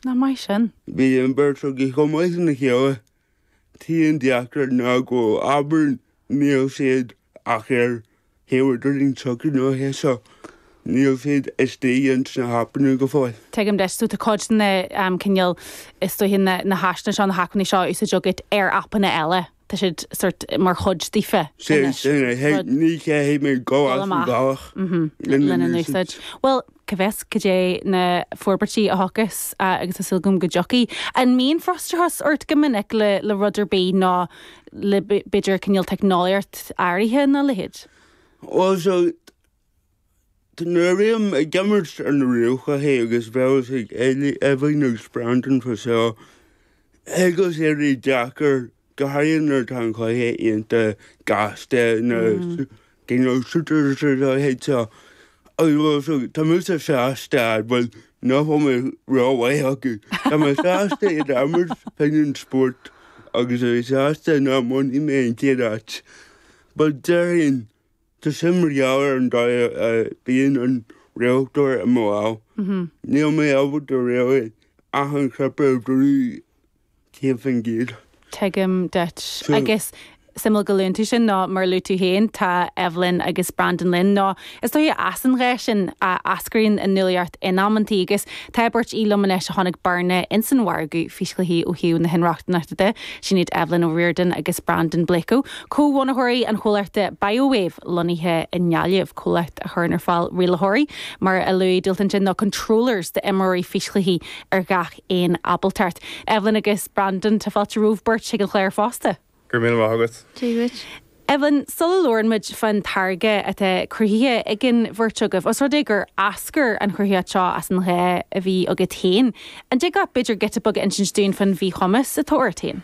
Nach maith sin? Bhí an beirt agaibh chomh maith lena chéile. Tá an deacracht ná go bhfuil abair níl siad ach ar thaobh an leithéid seo, níl siad istigh ins na hAipeanna go fóill. Tuigim duit. So tá cuid de na cineál is dóiche na na háiseanna seo, na hacmhainní seo in úsáid agat ar Aipeanna eile. tá siad sort mar chuid daofa anois, rud. Ní chaithfidh mé dul as an bhealach lena n-úsáid. Bhuel, cá bhfios cad é na forbairtí a thiocfas agus tá súil agam go dtiocfaidh. An mbíonn frustrachas ort go minic le rud ar bith nó le b'fhéidir cineál teicneolaíocht áirithe nó a leithéid? Bhuel, Tá mé ag imirt ar na ríomhchluichí agus beidh a fhios ag Evelyn agus Brandon fá seo. Thig leis éirí deacair, go háirithe nuair atá an cluiche iontach gasta na you know shooters nó a leithéid seo agus bhuel so tá mise sásta bhuel nach bhfuil mé ró-mhaith acu tá mé sásta iad a imirt, píosa spóirt agus a bheith sásta nach mbainfidh mé an chéad áit but déarfainn. Tá sé mar gheall ar an dóigh a mbíonn an rialtóir i mo lámh. Níl mé ábalta réidh achan chnaipe a bhrú céad faoin gcéad. Tuigim duit. Ach is suimiúil go luann tú sin nó mar a luaigh tú féin tá Evelyn agus Brandon linn nó is dóiche as an ghá sin a eascraíonn an nuálaíocht in amantaí agus tá beirt liom anois a d'aithin bearna ins an mhargadh físchluichí ó thaobh na hinrochtaineachta de. Sin iad Evelyn O'Riordan agus Brandon Blacoe comhbhunaitheoirí an chomhlachta ByoWave, lonnaithe i nGaillimh, comhlacht a chuireann ar fáil rialaitheoirí, mar a luaigh Dubhaltach ansin, nó 'controllers' d'imreoirí físchluichí ar gach aon ábaltacht. Evelyn agus Brandon, tá fáilte romhaibh beirt chuig an chlár fosta. Go raibh míle maith agat. Dia dhuit. Evelyn, sula labhrann muid fán táirge atá cruthaithe ag an bheirt agaibh, os rud é gur eascair an chruthaitheacht seo as an ghá a bhí agat féin, an dtig leat b'fhéidir giota beag a insint dúinn fán mhíchumas atá ort féin?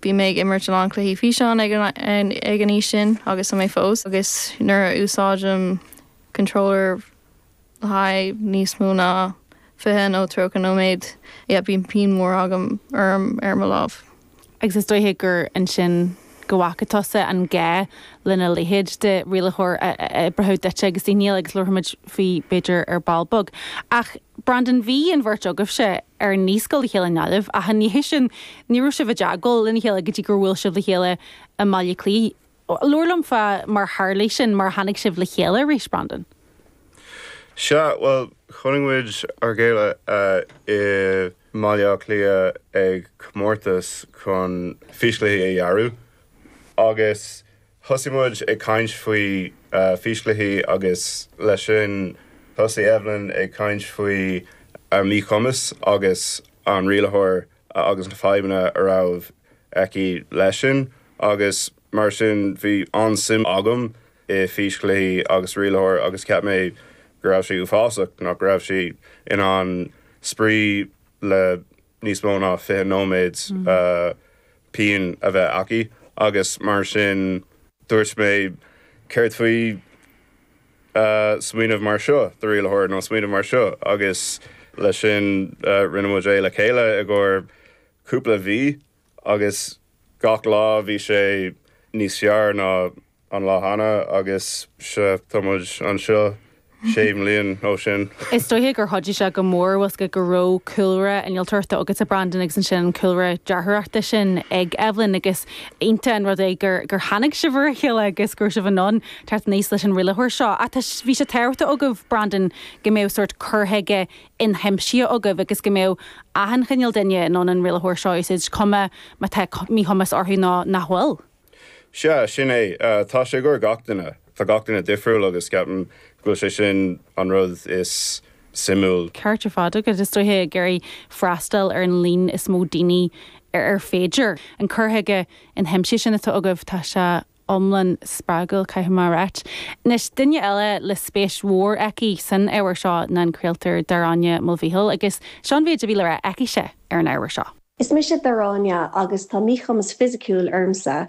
Bhí mé ag imirt a lán cluichí físeáin ag an aois sin agus tá mé fós agus nuair a úsáidim controller le haghaidh níos mó ná fiche nó tríocha nóiméad, yeah, bíonn pian mór agam or ar mo lámh. Agus is dóiche gur ansin go bhfaca tusa an gá lena leithéid de rialaitheoir a oibreodh duitse agus daoine eile agus labharfaimid faoi b'fhéidir ar ball beag. Ach Brandon bhí an bheirt agaibhse ar naíscoil le chéile i nGaillimh ach ina dhiaidh sin ní raibh sibh i dteagmháil lena chéile go dtí gur bhuail sibh le chéile i mBaile Cliath. Labhair liom fá mar tharla sin, mar a tháinig sibh le chéile arís, Brandon. Sea, bhuel chonaic muid a chéile i mBaile Átha Cliath ag comórtas chun físchluichí a dhearadh Agus thosaigh muid ag caint faoi físchluichí agus leis sin thosaigh Evelyn ag caint faoi a míchumas agus an rialaitheoir agus na fadhbanna a raibh aici leis sin agus mar sin bhí an-suim agam i bhfíschluichí agus rialaitheoir agus cheap mé go raibh sé uafásach nach raibh sí in ann spraoi le níos mó ná fiche nóiméad pian a bheith aici agus mar sin dúirt mé céard faoi smaoineamh mar seo do rialaitheoir nó smaoineamh mar seo agus leis sin rinne muid é le chéile i gcomhair cúpla mhí Agus gach lá bhí sé níos fearr ná an lá cheana agus sea, tá muid anseo sé bliana ó sin. Is dóigh gur chuidigh sé go mór bhfuil 's agad go raibh cúlra innealtóireachta agat a Brandon agus ansin an cúlra dearthóireachta sin ag Evelyn agus iontach an rud é gur gur tháinig sibh ar a chéile agus go raibh sibh in ann teacht aníos leis an rialaitheoir seo ach tá bhí sé tábhachtach agaibh Brandon go mbeadh sórt cur chuige inaimsithe agaibh agus go mbeadh achan chineál duine in ann an rialaitheoir seo a úsáid, cuma má tá míchumas orthu nó nach bhfuil. Sea, sin é. Tá sé i gcomhair gach duine. Tá gach duine difriúil agus ceapaim go bhfuil sé sin an rud is suimiúil. Ceart ar fad agat. Is dóiche ag iarraidh freastal ar an líon is mó daoine ar féidir. An cur chuige inaimsithe sin atá agaibh, tá sé iomlán spreagúil, caithfidh mé a ráit. Anois, duine eile le spéis mhór aici san ábhar seo ná an craoltóir Daráine Mulvihill, agus seo an méid a bhí le rá aicise ar an ábhar seo. Is mise Daráine agus tá míchumas fisiciúil ormsa.